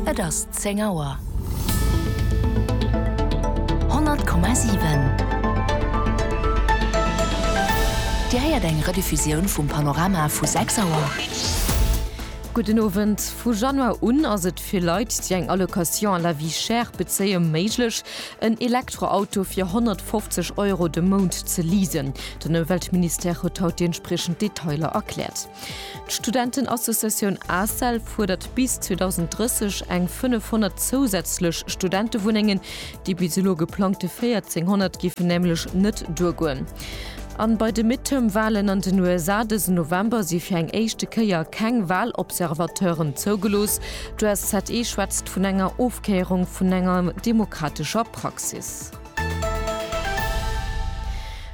Et ass zéng Auer. 100,7 Dir héiert eng Rediffusioun vum Panorama vu sechs Auer. Gudden Owend. Vu Januar un ass et fir Leit, déi eng Allocation à la vie chère bezéie méiglech, en Elektroauto fir 150 Euro de Mount ze leasen. Den Ëmweltministère huet haut déi entspriechend Detailer erkläert. D'Studentenassociatioun ACEL fuerdert bis 2030 eng 500 zousätzlech Studentewunnengen. Déi bis elo geplangte 1400 géifen nämlech net duergoen. An bei de Midterm-Walen an den USA dësen November si fir eng éischte Kéier keng Walobservateuren zougelooss. D'USZE schwätzt vun enger Ofkéierung vun enger demokratescher Praxis.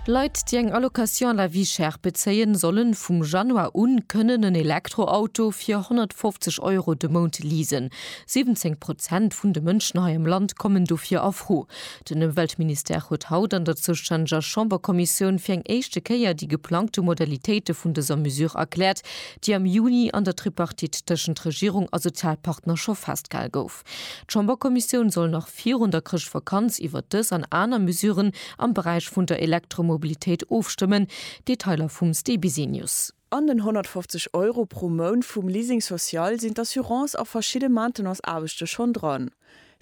Leit, déi eng Allocation à la vie chère bezéien, solle vum Januar u kënnen en Elektroauto fir 150 Euro de Mount leasen. 17 Prozent vun de Mënschen hei am Land kommen dofir a Fro. Den Ëmweltministère huet haut an der zoustänneger Chamberkommissioun fir eng éischte Kéier déi geplangte Modalitéite vun dëser Mesure erkläert, déi am Juni an der Tripartite tëschent Regierung a Sozialpartner scho festgehal gouf. D'Chamberkommissioun soll nach virun der Chrëschtvakanz iwwert dës an aner Mesuren am Beräich vun der Elektromobilitéit ofstëmmen. Detailer vum Stéi Bisenius. An den 150 Euro pro Mount vum Leasing social sinn d'Assurance a verschidde Maintenance-Aarbechte schonn dran.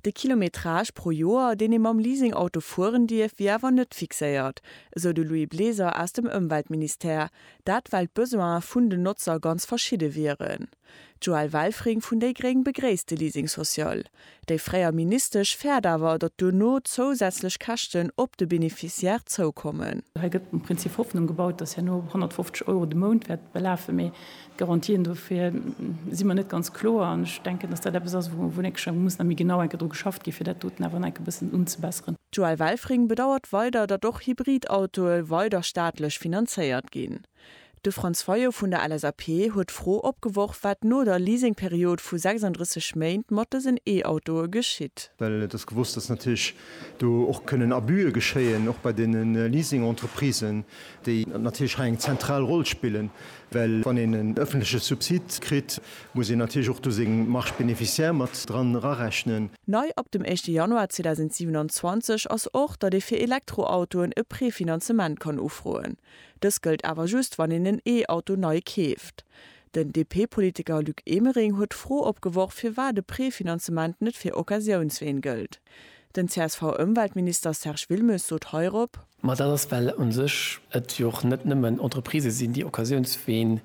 De Kilometrage pro Joer, deen ee mam Leasing-Auto fueren dierf, wier awer net fixéiert, esou de Louis Bleser aus dem Ëmweltministère. Dat well d'Besoine vun den Notzer ganz verschidde wieren. D'Joëlle Welfring vun déi gréng begréisst de Leasing social. Déi fréier Ministesch fäert awer, datt duerno zousätzlech Käschten op de Beneficiaire zoukommen. Hei gëtt um Prinzip Hoffnung gebaut, datt herno 150 Euro de Mount wäert belafen, mee d'Garantien dofir si mer net ganz kloer. An ech denken, datt dat eppes ass, wou en enke schonn muss nach méi genau enke dru geschafft ginn, fir dat doten awer nach enke bëssen unzebesseren. D'Joëlle Welfring bedauert weider, datt och Hybrid-Autoe weider staatlech finanzéiert ginn. De Franz Fayot vun der LSAP huet d'Fro opgeworf, wat no der Leasingperiod vu 36 Méint mat dësen E-Autoe geschitt. Well et ass gewosst, datt natierlech do och kënnen Abuse geschéien, och bei deene Leasing-Entreprisen, déi natierlech hei eng zentral Roll spillen. Well wann een en ëffentleche Subsid kritt, muss een natierlech och do seng Marges bénéficiaires mat dran erarechnen. Nei ab dem éischte Januar 2027 ass och, datt ee fir Elektroautoen e Prefinanzement kann ufroen. Dës gëllt awer just, wann een en E-Auto nei keeft. Den DP-Politiker Luc Emering huet d'Fro opgeworf, firwat e Prefinanzement net fir Occasiounsween gëllt. Den CSV-Ëmweltminister Serge Wilmes sot heirop. Ma dat ass, well u sech et jo och net nëmmen Entreprisë sinn, déi Occasiounsween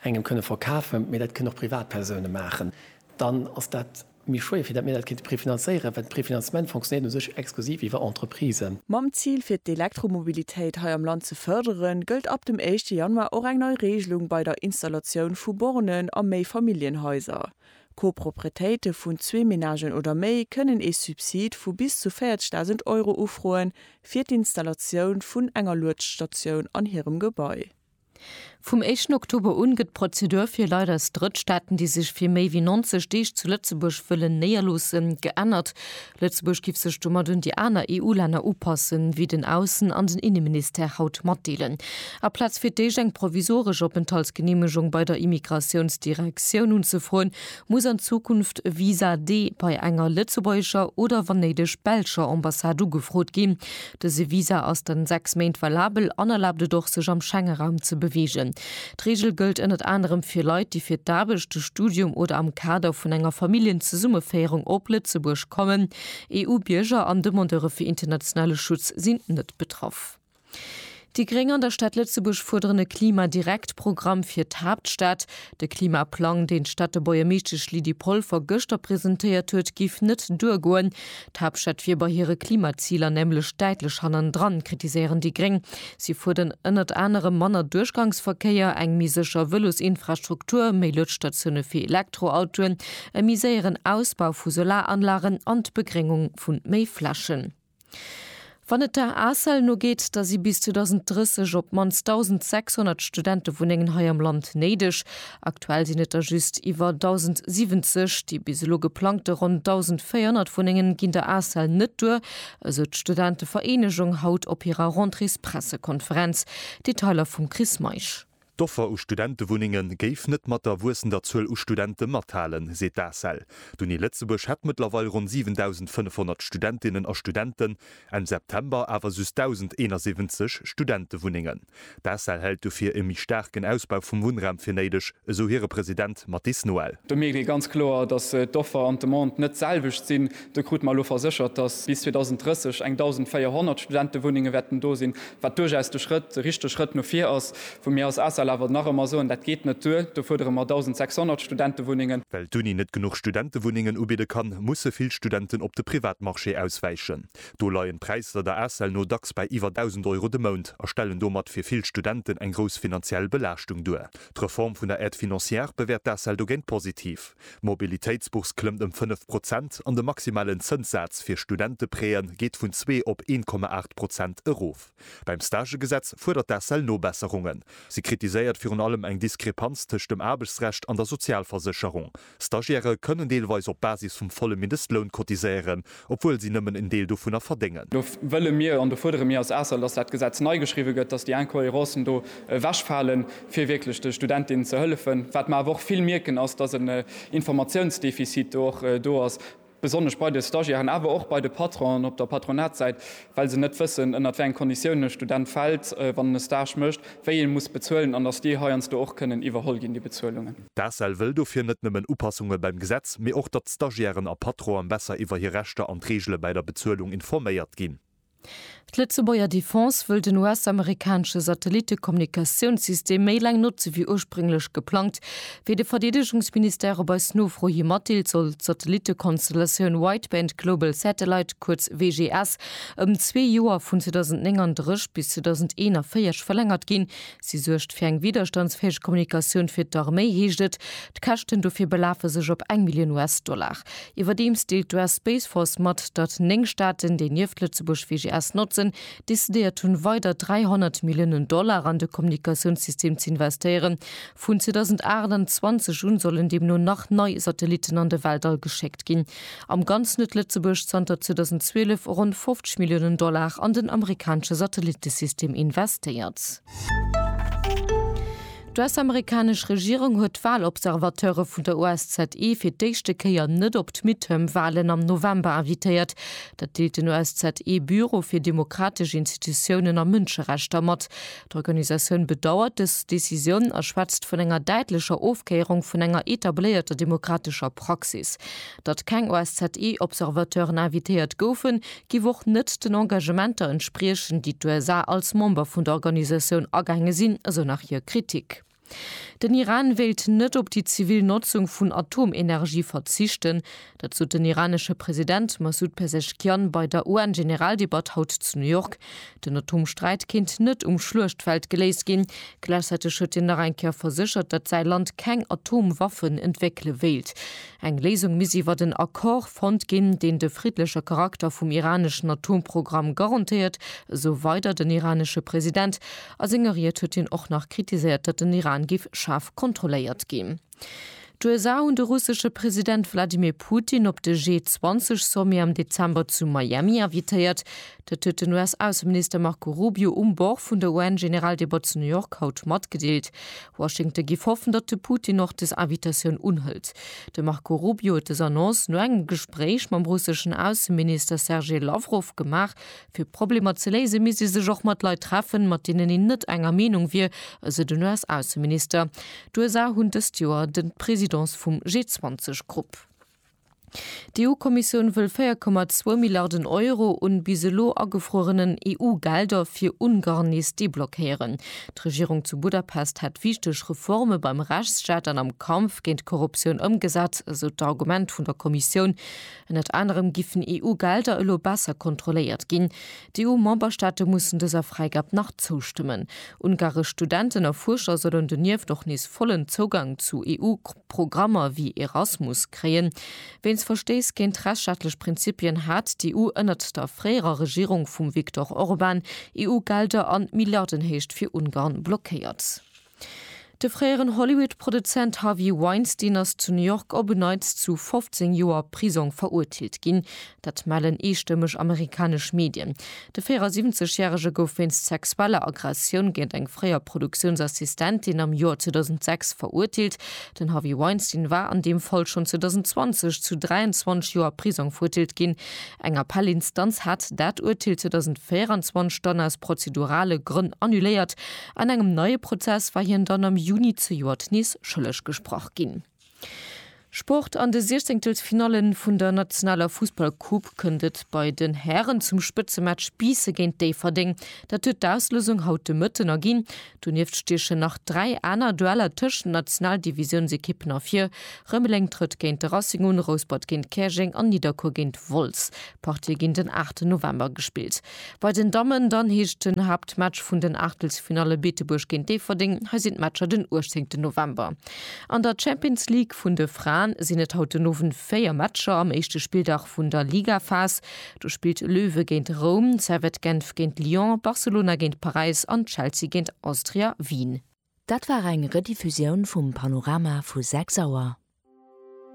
engem kënne verkafen, mee dat kënnen och Privatpersoune maachen. Dann ass dat Mir schwéier, fir dat mir dat kéinte prefinanzéieren, well de Prefinanzement fonctionnéiert u sech exklusiv iwwer Entreprisen. Mam Zil fir d'Elektromobilitéit hei am Land ze fërderen, gëllt ab dem éischte Januar och eng nei Reegelung bei der Installatioun vu Bornen a Méifamilljenhaiser. Coproprietéite vun zwee Menagen oder méi kënnen ee Subsid vu bis zu 40.000 Euro ufroen, fir d'Installatioun vun enger Luedstatioun an hirem Gebai. Vum éischten Oktober un gëtt d'Prozedur fir Leit aus Drëttstaaten, déi sech fir méi wéi 90 Deeg zu Lëtzebuerg wëllen néierloossen, geännert. Lëtzebuerg giff sech domat un déi aner EU-Länner upassen, wéi den Aussen an den Inneministère haut matdeelen. Aplaz fir d'éischt eng provisoresch Openthaltsgeneemegung bei der Immigratiounsdirektioun unzefroen, muss an Zukunft e Visa D bei enger lëtzebuergescher oder wann néideg belscher Ambassade ugefrot ginn. Dëse Visa ass dann 6 Méint valabel an erlaabt et och, sech am Schengeraum ze beweegen. D'Reegel gëllt ënnert anerem fir Leit, déi fir d'Aarbecht, de Studium oder am Kader vun enger Familljenzesummeféierung op Lëtzebuerg kommen. EU-Bierger an Demandeure fir internationale Schutz sinn net betraff. Déi Gréng an der Stad Lëtzebuerg fuerderen e Klima-Direkt-Programm fir d'Haaptstad. De Klimaplang, deen d'Stadtebuergermeeschtesch Lydie Polfer gëschter presentéiert huet, géif net duergoen. D'Haaptstad wier bei hire Klimaziler nämlech däitlech hannendran, kritiséieren déi Gréng. Si fuerden ënnert anerem manner Duerchgangsverkéier, eng méi sécher Vëlosinfrastruktur, méi Luedstatioune fir Elektroautoen, e méi séieren Ausbau vu Solaranlagen an d'Begréngung vu méi Flächen. Wann et der ACEL no geet, da si bis 2030 op d'mannst 1.600 Studentewunnengen hei am Land néideg. Aktuell sinn et der just iwwer 1.070. Déi bis elo geplangte ronn 1.400 Wunnengen ginn der ACEL net duer, esou d'Studentevereenegung haut op hirer Rentréespressekonferenz. Detailer vum Chris Meisch. D'Offer u Studentewunnenge géif net mat der wuessender Zuel u Studente mathalen, seet d'ACEL. D'Uni Lëtzebuerg hätt mëttlerweil ronn 7.500 Studentinnen a Studenten, Enn September awer just 1.071 Studentewunnengen. D'ACEL hält dofir e méi staarken Ausbau vum Wunnraum fir néideg, esou hire President Mathis Noel. Do mierkt ee ganz kloer, datt d'Offer an d'Demande net d'selwecht sinn. Do krute mer elo verséchert, dass bis 2030 eng 1.400 Studentewunnenge wäerten do sinn, wat duerchaus de Schrëtt, de richtege Schrëtt no vir ass. Wou mir als ACEL awer nach ëmmer soen, dat geet net duer, do fuerdere mer 1.600 Studentewunnengen. Well d'Uni net genuch Studentewunnengen ubidde kann, musse vill Studenten op de Privatmarché auswäichen. Do leien d'Präisser der ACEL no dacks bei iwwer 1.000 Euro de Mount a stellen domat fir vill Studenten eng grouss finanziell Belaaschtung duer. D'Reform vun der Aide financière bewäert d'ACEL dogéint positiv. D'Mobilitéitsbourse klëmmt ëm 5 Prozent an de maximalen Zënssaz fir Studenteprêtë geet vun zwee op 1,8 Prozent erof. Beim Stagegesetz fuerdert d'ACEL Nobesserungen. Si kritiséiert virun allem eng Diskrepanz tëscht dem Aarbechtsrecht an der Sozialversécherung. Stagiairë kënnen deelweis op Basis vum volle Mindestloun cotiséieren, obwuel si nëmmen en Deel dovunner verdéngen. Do wëlle mir an do fuerdere mir als ACEL, dass dat Gesetz nei geschriwwe gëtt, dass déi Incohérencen do ewechfalen, fir wierklech de Studentinnen ze hëllefen. Wat mer awer och vill mierken, ass, dass en Informatiounsdefizit do och do ass, besonnesch bei de Stagiairen, awer och bei de Patronen op der Patronatssäit, well se net wëssen, ënnert wéi eng Konditiounen e Student fält, wann en e Stage mécht, wéi ee muss bezuelen an dass déi heiansdo och kënnen iwwerholl ginn, déi Bezuelungen. D'ACEL wëll dofir net nëmmen Upassunge beim Gesetz, mee och, datt Stagiairen a Patronen besser iwwer hir Rechter an d'Reegele bäi der Bezuelung informéiert ginn. D'Lëtzebuerger Defense wëll den US-amerikanesche Satellitte-Kommunikatiounssystem méi laang notze wéi ursprénglech geplangt. Wéi de Verdeedegungsministère op eis Nofro hi matdeelt, soll d'Satellitte-Konstellatioun Wideband Global Satellite, kuerz WGS, ëm zwee Joer, vun 2039 bis 2041, verlängert ginn, Si suergt fir eng widderstandsfäeg Kommunikatioun fir d'Arméi, heescht et. D'Käschten dofir belafe sech op eng Millioun US-Dollar. Iwwerdeems deelt d'US Space Force mat, datt néng Staaten, déi nieft Lëtzebuerg VGS notzen, decidéiert hunn, weider 300 Milliounen Dollar an de Kommunikatiounssystem ze investéieren. Vun 2028 un sollen deemno nach nei Satellitten an de Weltall geschéckt ginn. Am Ganzen huet Lëtzebuerg zanter 2012 ronn 50 Milliounen Dollar an den amerikanesche Satellittesystem investéiert. D'US-amerikanesch Regierung huet d'Walobservateure vun der OSZE fir d'éischte Kéier net op d'Midterm-Walen am November invitéiert. Dat deelt den OSZE-Büro fir demokratesch Institutiounen a Mënscherechter mat. D'Organisatioun bedauert dës Decisioun a schwätzt vun enger däitlecher Ofkéierung vun enger etabléierter demokratescher Praxis. Datt keng OSZE-Observateuren invitéiert goufen, giff och net den Engagementer entspriechen, déi d'USA als Member vun der Organisatioun agaange sinn, esou nach hir Kritik. Den Iran wéilt net op déi zivil Notzung vun Atomenergie verzichten. Dat sot den iranesche President Massoud Pezeshkian bei der UN-Generaldebatt haut zu New York. Den Atomsträit kéint net um Schluechtfeld geléist ginn. Gläichzäiteg huet hien nach eng Kéier verséchert, datt säi Land keng Atomwaffen entwéckele wéilt. Eng Léisung misst iwwert en Accord fonnt ginn, deen de friddleche Charakter vum iraneschen Atomprogramm garantéiert, esou weider den iranesche President. A senger Ried huet hien och nach kritiséiert, datt den Iran géif schaarf kontrolléiert ginn. D'USA hunn de russesche President Wladimir Putin op de G20-Sommet am Dezember zu Miami invitéiert. Dat huet den US-Ausseminister Marco Rubio um Bord vun der UN-Generaldebat zu New York haut matgedeelt. Washington géif hoffen, datt de Putin och des Invitatioun unhëlt. De Marco Rubio huet des Annonce no engem Gespréich mam russeschen Ausseminister Sergej Lawrow gemaach, Fir Problemer ze léisen, misst ee sech och mat Leit treffen, mat deenen een net enger Meenung wier, esou den US-Ausseminister. D'USA hunn dëst Joer de d'Presidence vum G20-Grupp. D'EU-Kommissioun wëll 4,2 Milliarden Euro un bis elo agefruerenen EU-Gelder fir Ungarn nees deblockéieren. D'Regierung zu Budapest hätt wichteg Reforme beim Rechtsstaat an am Kampf géint d'Korruptioun ëmgesat, esou d'Argument vun der Kommissioun. Ënnert anerem giffen EU-Gelder elo besser kontrolléiert ginn. D'EU-Memberstaate mussen dëser Fräigab nach zoustëmmen. Ungaresch Studenten a Fuerscher sollen donieft och nees vollen Zougang zu EU-Programmer wéi Erasmus kréien. Wéinst Verstéiss géint rechtsstaatlech Prinzipien hat d'EU ënnert der fréierer Regierung vum Viktor Orban EU-Gelder an Milliardenhéicht fir Ungarn blockéiert. De fréieren Hollywood-Produzent Harvey Weinstein ass zu New York op en Neits zu 15 Joer Prisong verurteelt ginn. Dat mellen eestëmmeg amerikanesch Medien. De 74 Järege gouf wéinst sexueller Aggressioun géint eng fréier Produktiounsassistentin am Joer 2006 verurteelt. Den Harvey Weinstein war an deem Fall schonn 2020 zu 23 Joer Prisong verurteelt ginn. Eng Appellinstanz hat dat Urteel 2024 dann aus prozedurale Grënn annuléiert. An engem neie Prozess war hien dann am Juni zejoert nees schëlleg gesprach ginn. Sport, An de Siechzéngtelsfinalle vun der nationaler Fussballcoupe kënnt et bei den Hären zum Spëtzematch Biisse géint Déifferdeng. Dat huet d'Auslousung haut de Mëtten erginn. Donieft stiechen nach dräi aner Dueller tëscht den Nationaldivisiounsekippen ervir. Rëmeleng trëtt géint de Racing un, Rouspert géint Käerjeng an Nidderkuer géint Wolz. D'Partie ginn den 8 November gespillt. Bei den Dammen dann heescht den Haaptmatch vun den Aachtelsfinalle Beetebuerg géint Déifferdeng. Hei sinn d'Matcher den 18 November. An der Champions League vun de Fraen sinn et haut den Owend 4 Matcher am éischte Spilldag vun der Ligaphas. Do spillt Löwe géint Roum, Servette Genf géint Lyon, Barcelona géint Paräis an Chelsea géint Austria Wien. Dat war eng Rediffusioun vum Panorama vu 6 Auer.